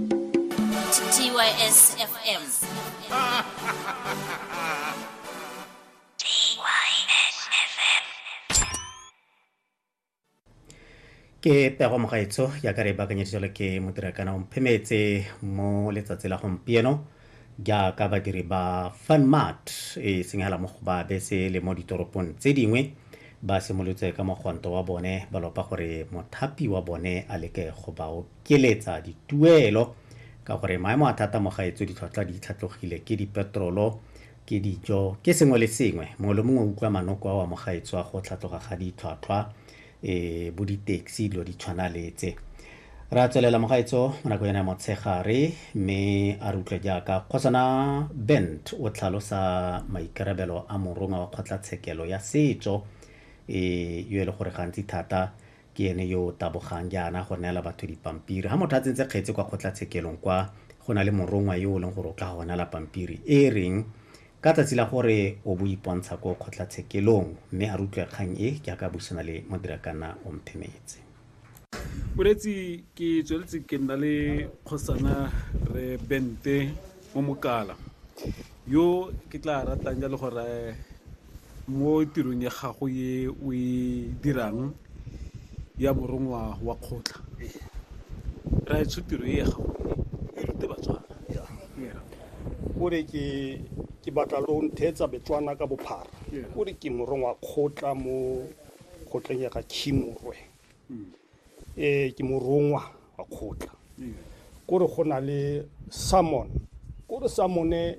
TYS FM. ke pego mogaetso ya ka re bakanyeditswele ke modirakana omphemetse mo letsatsi la gompieno jaaka badiri ba funmart e senyegela mo go ba bese le mo ditoropong tse dingwe ba simolotse ka mogwanto wa bone ba lopa gore mothapi wa bone a leke go ba ikeletsa dituelo ka gore maemo a thata mo gaetso ditlhotlhwa di tlhatlogile ke dipetrolo ke dijo ke sengwe le sengwe mongwe le mongwe o utlwa manoko a wa mo gaetso a go tlhatlhoga ga ditlhwatlhwa e bo di-taxi dilo di tshwana letse ra tswelela mogaetso mo nako yone ya motshegare mme a re utlwe jaaka kgosana bent o tlhalosa maikarabelo a morongwa wa kgotlatshekelo ya setso e yo e le gore gantsi thata Ke ene yo o tabogang jaana go neela batho dipampiri. Ga motho a tsentse kgetse kwa kgotlatshekelong kwa, go na le morongwa yo o leng gore o tla go neela pampiri e e reng, Ka tsatsi la gore o bo o ipontsha ko kgotlatshekelong, mme a re utlwe kgang e, jaaka a buisana le Modirakanna Omphemetse. Moreetsi, Ke tsweletse ke nna le Kgosana Rre Bente Momokala, yo ke tla ratang jalo gore mo tirong ya gago e o e dirang ya morongwa wa kgotla raetsho tiro e ya gago e e rute batswana o re ke ke batla lo ntheetsa betswana ka bophara o re ke morongwa kgotla mo kgotleng ya ga khimorwe um ke morongwa wa kgotla ko re go na le salmon ko re salmone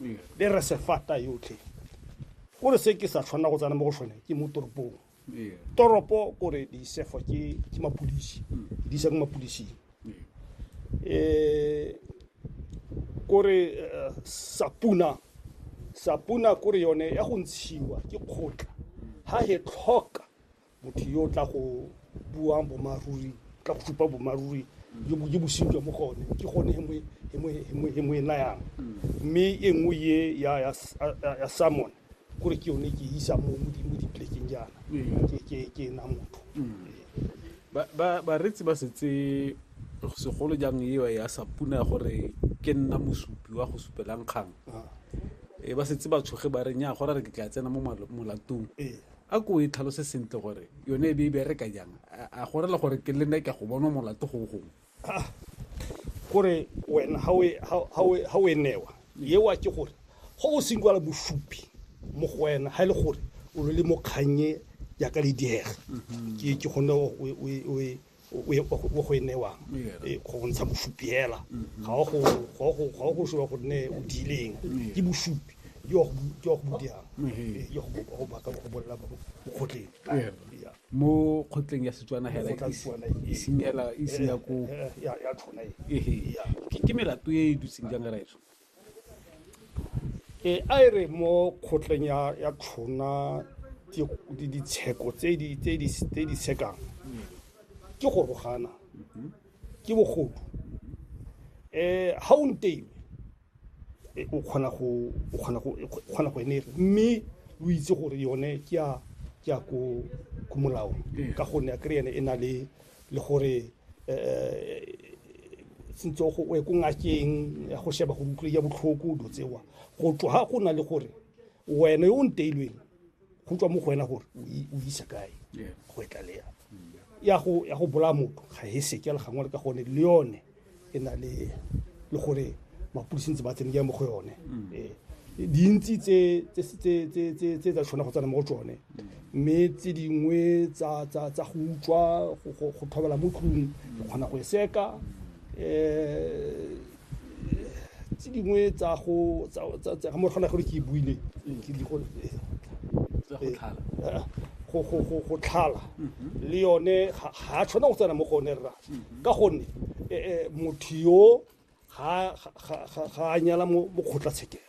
le re sefata yotlhe o re se ke sa tshwanela go tsena mo go sone ke mo toropong toropo kore di sefo ke ke mapodisi di isa ko mapodising eh kore eh, sapuna sapuna kore yone ya go ntshiwa ke kgotla ha he tlhoka motho yo o tla go buang bomaruri o tla go supa bomaruri jo bo bosenyi jwa mo go one ke gone he mo e nayang mme e nngwe ye ya- ya s- ya- ya- ya salmon kore ke yone ke e isa mo mo di- mo dipolekeng jaana ke- ke- ke ena motho Ba- ba- bareetsi ba setse segolo jang eo ya sa puna gore ke nna mosupi wa go supelang kgang Ah, e ba setse ba tshoge ba re nya gore re ke tla tsena mo malo- molatong ee a ko e tlhalose sentle gore yone e be e bereka jang a gore le gore ke lene ka go bonwa molato go gongwe ah, gore wena ha we ha we ha we newa ye wa ke gore go o sengwala bosupi mo go wena ha e le gore o le mo kgannye ya ka le diega ke ke gone o e o go e newang e, go bontsha bosupi hela mm-hmm. ga o go shoa gonne o diileng ke bosupi yo go budiang yo go baka go bolela mo kgotleng mo kgotleng ya setswana hela iseng hela iseng ya ko ya tshwana e ke melato e e dutseng jang raetso Ee, a e re mo kgotleng ya ya tshona di ditsheko tse di tse di tse di sekang ke go rogana ke bogodu eh ha o nteile e, o kgona go o kgona go e kgona go enega mme o itse gore yone ke ya ke ya ko ko molaong ka gonne a kry ene e na le le gore sentse o ye ko ngakeng ya go sheba gore utlwe ya botlhoko dilo tsewa go tloga go na le gore wena yo o nteilweng go tswa mo go wena gore o isa kae go etlalea ya go bolaya motho ga e seke le gangwe le ka gone le yone e na le le gore mapodisi ntse ba tsene ke mo go yone mm. ee. dintsi tse tsa tshwana go tsena mo go tsone mme tse dingwe tsa go utswa go thobela mo tlung go kgona go e seka um tse dingwe tsa go mo kgona gore ke e buile go tlhala le yone ga a tshwana go tsena mo go one rra ka gonne motho yo ga a nyala mo kgotlatshekelo.